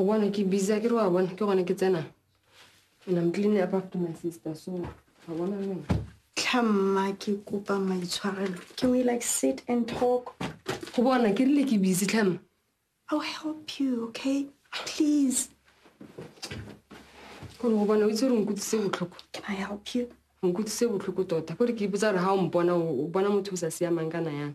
go bona ke busy ke re wa bona ke gone ke tsenang and i'm cleaning up after my sister so ga bona leng tlhamma ke kopa maitshwarelo can we like sit and talk go bona ke rile ke busy tlhamma i'll help you okay please gore go bona o itse gore nkutlwise botlhoko can i help you nkutlwise botlhoko tota kore ke ipotsa gore ga o mpona o bona motho o sa siamang kana yang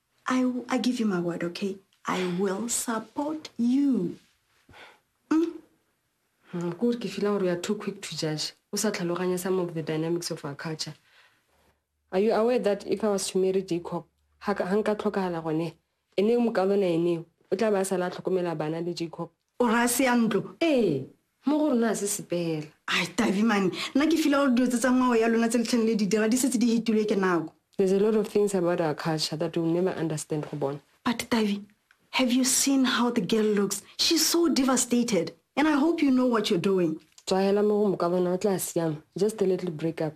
I, w- I give you my word, okay? I will support you. Mm, kore ke feelang gore you are too quick to judge o sa tlhaloganya some of the dynamics of our culture are you aware that if i was to marry jacob ga nka tlhokagala gone e ne mokalona eneo o tla ba a sala a tlhokomela bana le jacob O re a se ya ntlo? Ee, mo go rona a se sepela. Ai, Tavi mane, nna ke fila gore dilo tse tsa ngwao ya lona tse le tlhang le di dira di setse di hetilwe ke nako. There's a lot of things about our culture that you'll never understand go bona. But Tavi, have you seen how the girl looks? She's so devastated and I hope you know what you're doing. Tswahela mo go mokabana o tla siama. Just a little break up.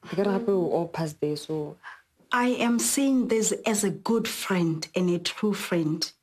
Ke kare gape we're all past there so. I am saying this as a good friend and a true friend.